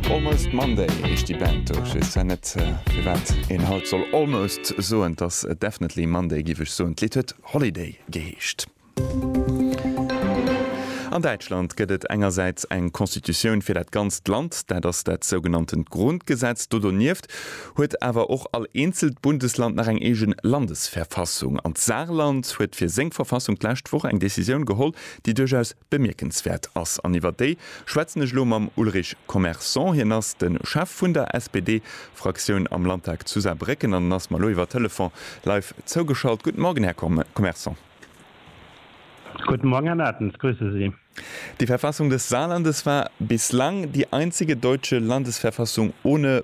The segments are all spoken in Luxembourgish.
Almost Monday heescht déi Band do. Ech weess zwar net firwat een haut soll almost soen, 't ass definitely Monday giff ech soen. D'Lidd huet Holiday geheescht. An Däitschland gëtt et engersäits eng Constitutioun fir dat ganzt Land, dat ass dat sougenanntent Grundgesetz. Do donieft huet awer och all eenzelt Bundesland nach eng eegen Landesverfassung. An d'Saarland huet fir seng Verfassung d'lescht Woch eng Decisioun geholl, déi duerchaus Bemierkenswäert ass, an iwwer déi schwätzen ech elo mam Ulrich Commerson, hien ass de Chef vun der SPD-Fraktioun am Landtag zu Saarbrécken an en ass mer elo iwwer Telefon live zougeschalt. Guten Morgen, Här Commerson. Guten Morgen, Herr Mertens, grüße Sie. Die Verfassung des Saarlandes war bislang die einzige deutsche Landesverfassung ohne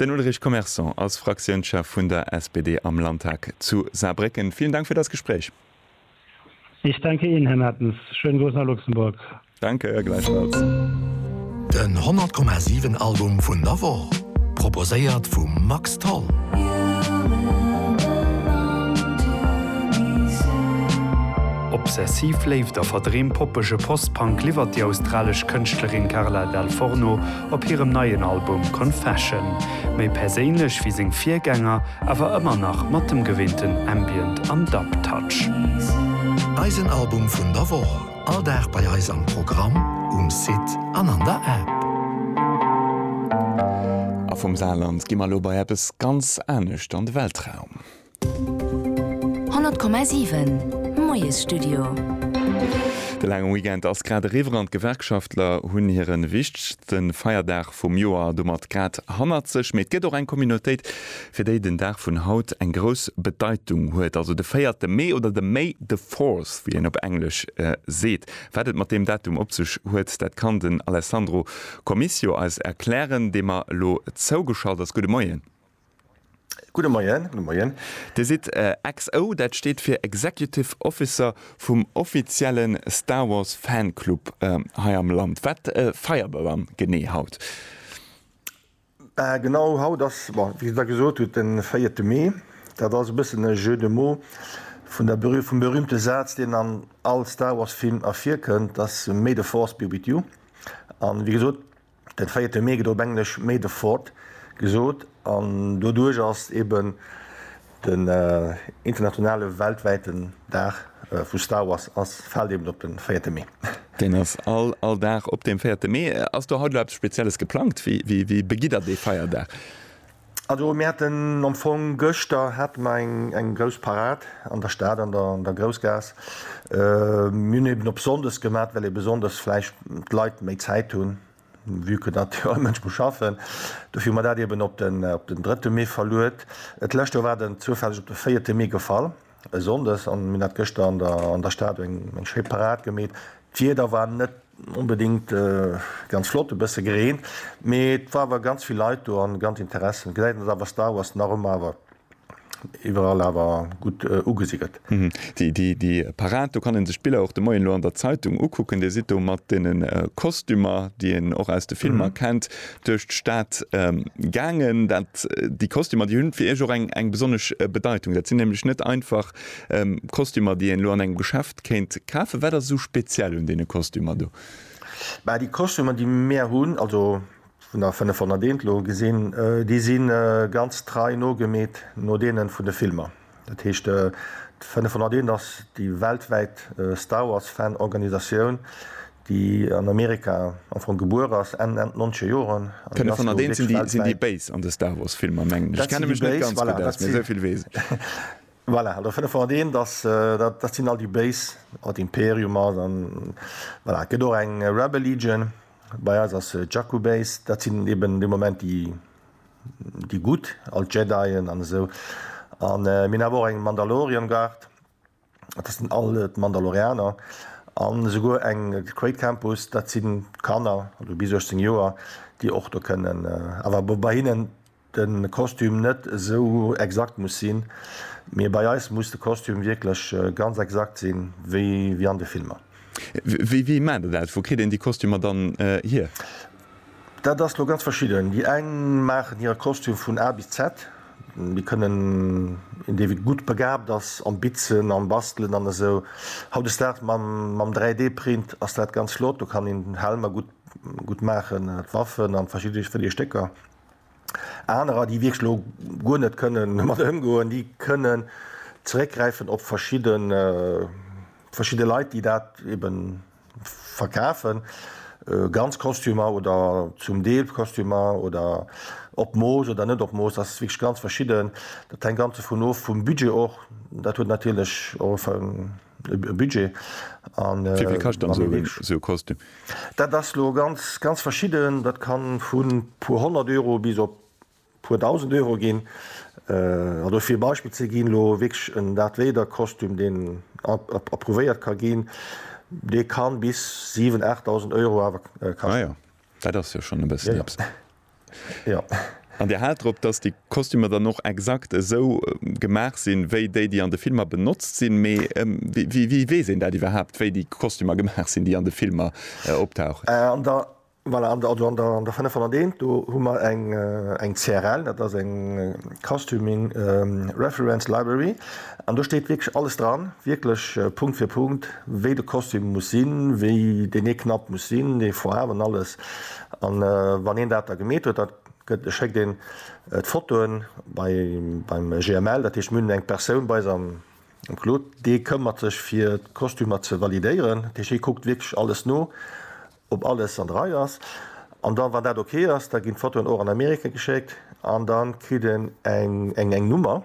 Den Ulrich Commerson ass Fraktiounschef vun der SPD am Landtag zu Saarbrécken. Villen Dank fir dass Gespréich. Ich danke Ihnen, Här Mertens. Schönen Gruß nach Luxemburg. Danke, gläichfalls. Den 100 Komma 7 Album vun der Woch, proposéiert vum Max Tholl. Obsessiv Léift a verdreem poppege Post-Punk liwwert déi australesch Kënschtlerin Carla Dal Forno Op hirem neien Album Confession, méi perséinlech wéi seng Virgänger, awer ëmmer nach mat dem gewinnten Ambient an Dub Touch. Eisen Album vun der Woch, all Dag bei eis am Programm, um Site an an der App. A vum Saarland gi mer elo bei eppes ganz anescht, an de Weltraum. 100,7 Moiesstudio. De laange Weekend ass grad eriwwer an d'Gewerkschaftler hunn hiren wichtegste Feierdag vum Joer domat grad hannert sech. Mee et gëtt och eng Communautéit, fir déi den Dag vun haut eng grouss Bedeitung huet, also de 4 Mee oder de May the Fourth, wéi een op Englesch seet. Wat et mat deem Datum op sech huet, dat kann den Alessandro Comicio eis erklären, dee mer elo zougeschalt ass. Gudde Moien. Gudde Moien. Dir sidd XO, dat steet fir Executive Officer vum offizielle Star Wars Fanclub hei am Land. Wat feiert der dann genee haut? Genau, haut ass, wéi Der gesot hutt, de véierte Mee. Dat ass e bëssen e Jeu de mots vum berühmte Saz, deen an all Star Wars Film ervirkënnt, dass May the Force be with you. An wéi gesot, Den véierte Mee gëtt op Englesch May the Fourth gesot an doduerch ass eben den internationale weltwäiten Dag vu Star Wars ass fält eben op den véierte Mee. Deen ass all all Dag op deem véierte Mee. Ass do haut elo eppes Spezielles geplangt? Wéi wéi begitt der dee Feierdag? Also mir haten am Fong gëschter hate mer eng eng grouss Parad an der Stad an der an der Groussgaass. Mir hunn eben op sonndes gemat, well ebe sonndes vläicht d'Leit méi Zäit hunn, vue que datt jo e Mënsch muss schaffen. Dofir hu mer dat eben op den op den drëtte Mee verluet. D'lescht Joer war den zoufälleg op de véierte Mee gefall, e Sonndes, an mir hunn dat gëschter an der an der Stad eng eng schéi Parad gemeet. D'Wieder war net Onbedingt ganz flott, e bësse green, mee et war awer ganz vill Leit do an ganz Interessen. Gesäit een et awer Star Wars nach ëmmer awer iwwerall awer gutt ugesi gëtt. Déi Parad, do kann een sech d'Biller och de Moien elo an der Zeitung ukucken. Dir sidd do mat deenen Kostümer, déi een och aus de Filmer kennt, duerch d'Stad gaangen. Dat, déi Kostümer, déi hunn fir Iech och eng besonnesch Bedeitung. Dat sinn nämlech net einfach Kostümer, déi een elo an engem Geschäft. Kéint kafen. Wat ass esou speziell un deene Kostümer do? Bah déi Kostümer déi mär hunn, also vun der 501 elo gesinn, déi si ganz trei nogemeet no deene vun de Filmer. Dat heescht d'501 ass déi weltwäit Star Wars Fan Organisatioun, déi an Amerika am Fong gebuer ass Enn Enn d'nonzege Joren an déi ass elo wierklech weltwäit. D'501 sinn déi Béis an de Star Wars Filmer mengen ech. Ech kenne mech net ganz gutt aus, mä esou vill weess ech. Voilà, do 501, dass, dat, dat sinn all déi Béis, an d'Imperium ass, an voilà, et gëtt och eng Rebel Legion, bei eis ass Jakku Base, dat sinn eben de Moment déi, déi Gutt, all d'Jedien an esou. An mir hunn awer och eng Mandalorian Guard, dat sinn all d'Mandalorianer, an esouguer eng Crait Campus, dat sinn d'Kanner, also bis 18 Joer, déi och do kënnen, awer bei hinnen, de Kostüm net esou exakt muss sinn, mee bei eis muss de Kostüm wierklech ganz exakt sinn, wéi an de Filmer. Wéi wéi maacht der dat? Wou kritt een déi Kostümer dann hier? Dat ass lo ganz verschidden. Déi eng maachen hire Kostüm vun A bis Z. Déi kënnen een dee wéi gutt begaabt ass am Bitzen, am Bastelen an esou. Hautdesdaags mam 3D Print ass dat ganz flott, do kann een Helmer gutt maachen, d'Waffen an verschidde Stécker. Anerer, déi wierklech elo guer net kënnen domat ëmgoen, déi kënnen zeréckgräifen op verschidde, verschidde Leit, déi dat ebe verkafen, ganz Kostümer oder zum Deel Kostümer oder op Mooss oder net op Mooss. Dat ass wierklech ganz verschidden. Dat hänkt ganz dovun of, vum Budget och. Dat huet natierlech och e. e Budget an wéi vill kascht dann esou en esou Kostüm? Dat ass elo ganz ganz verschidden, dat ka vu puer honnert Euro bis op puer dausend Euro ginn. An do fir e Beispill ze ginn, elo wierklech en Darth Vader Kostüm deen approuvéiert ka ginn, dee ka bis siwen, aacht dausend Euro awer kaschten. Ah jo, dat ass jo schonn e bëssen eppes. Jo. An Dir haalt drop, dass déi Kostümer dann och exakt esou gemaach sinn, wéi déi, déi an de Filmer benotzt sinn. Mee wéi weess een dat iwwerhaapt, wéi déi Kostümer gemaach sinn, déi an de Filmer optauchen? An der, voilà, an der, an der 501 do hu mer eng, eng CRL, dat ass eng Costuming Reference Library, an do steet wierklech alles dran, wierklech Punkt fir Punkt, wéi de Kostüm muss sinn, wéi deen ee Knapp muss sinn, dee Foarwen, alles. An wann een dat da gemeet huet, da schéckt een d'Fotoen beim GML, dat heescht mir hunn eng Persoun bei eis am Claude, dee këmmert sech fir d'Kostümer ze validéieren. Dat heescht hie kuckt wierklech alles no, ob alles an der Rei ass. An da wann dat ok ass, da ginn d'Fotoen och an Amerika geschéckt an da kritt een eng Nummer.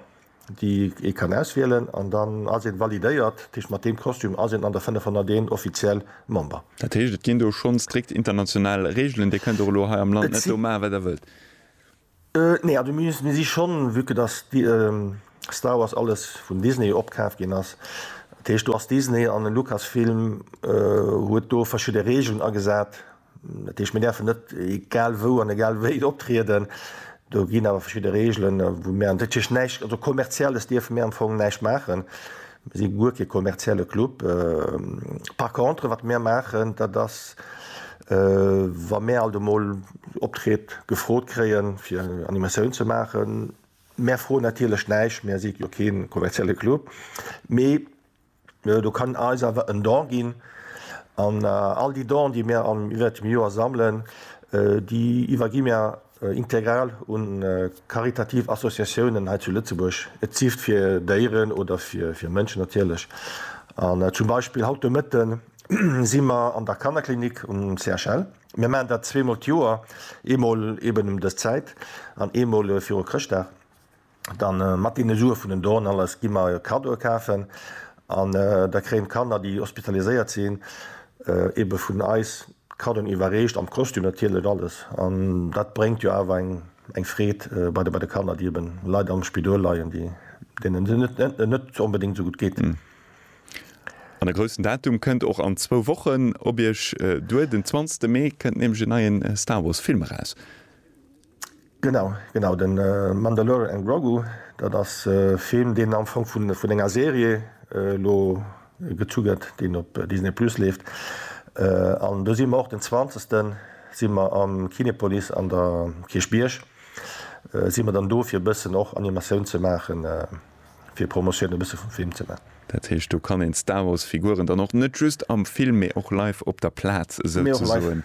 déi ee kann auswielen an dann ass een validéiert, dat heescht mat deem Kostüm ass een an der 501 offiziell Member. Dat heescht et ginn do schonn strikt international Reegelen, Dir kënnt och elo hei am Land net do maachen wat der wëllt? Nee, also mir si schonn, vue que dass Star Wars alles vun Disney opkaaft ginn ass, dat heescht do ass Disney an den Lucasfilm huet do verschidde Reegelen agesat, Dat heescht, mir däerfen net egal wou an egal wéi optrieden. Do ginn awer verschidde Reegelen, wou mir an dat heescht näischt, also Kommerzielles dierfe mir am Fong näischt maachen. Mir si guer kee kommerzielle Club. Par contre, wat mir maachen, dat ass, wa mir alt emol Optrëtt gefrot kréien, fir Animatioun ze maachen, mir froen natierlech näischt, mir si jo kee kommerzielle Club, mee Do kann eis awer en Don ginn. An all déi Donen, déi mir iwwert dem Joer sammelen, déi iwwergi mir integral u karitativ Associatiounen hei zu Lëtzebuerg. Et sift fir Déieren oder fir Mënschen natierlech. An zum Beispill haut de Mëtte si mer an der Kannerklinik um CHL. Mir maachen dat zweemol d'Joer, eemol eben ëm dës Zäit an eemol viru Chrëschtdag. dann mat deene Sue vun den Donen alles gi mer Kaddoe kafen an da kréien d'Kanner, déi hospitaliséiert sinn, ebe vun eis Kaddoen iwwerreecht, am Kostüm natierlech alles an dat bréngt jo awer eng Freed bei de Kanner, déi eben leider am Spidol leien, deenen et net onbedéngt esou gutt geet. An e groussen Datum kënnt och an zwou Wochen op Iech duer, den 20 Mee kënnt nämlech en neien Star Wars Film eraus. Genau, genau, de Mandalorian Grogu, dat ass e Film, deen am Fong vun vun enger Serie elo gezu gëtt, deen op Disney Plus leeft. An do si mer och den zwanzegsten, si mer am Kinepolis an der Kierchbierg, si mer dann do fir e bëssen och Animatioun ze maachen. fir Promotioun e bësse vum Film ze man. Dat heescht, do kann een d'Star Wars Figuren dann och net just am Film, mee och live op der Plaz souzesoen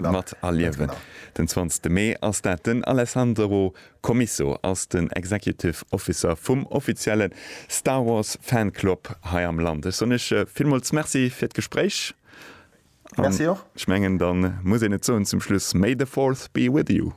mat erliewen. Den zwanzegste Mee ass dat. Den Alessandro Commisso ass den Executive Officer vum offizielle Star Wars Fan Club hei am Land. Ech soen iech villmools Merci fir d'Gespréich an ech mengen, da muss een et soen zum Schluss, May the Fourth be with you.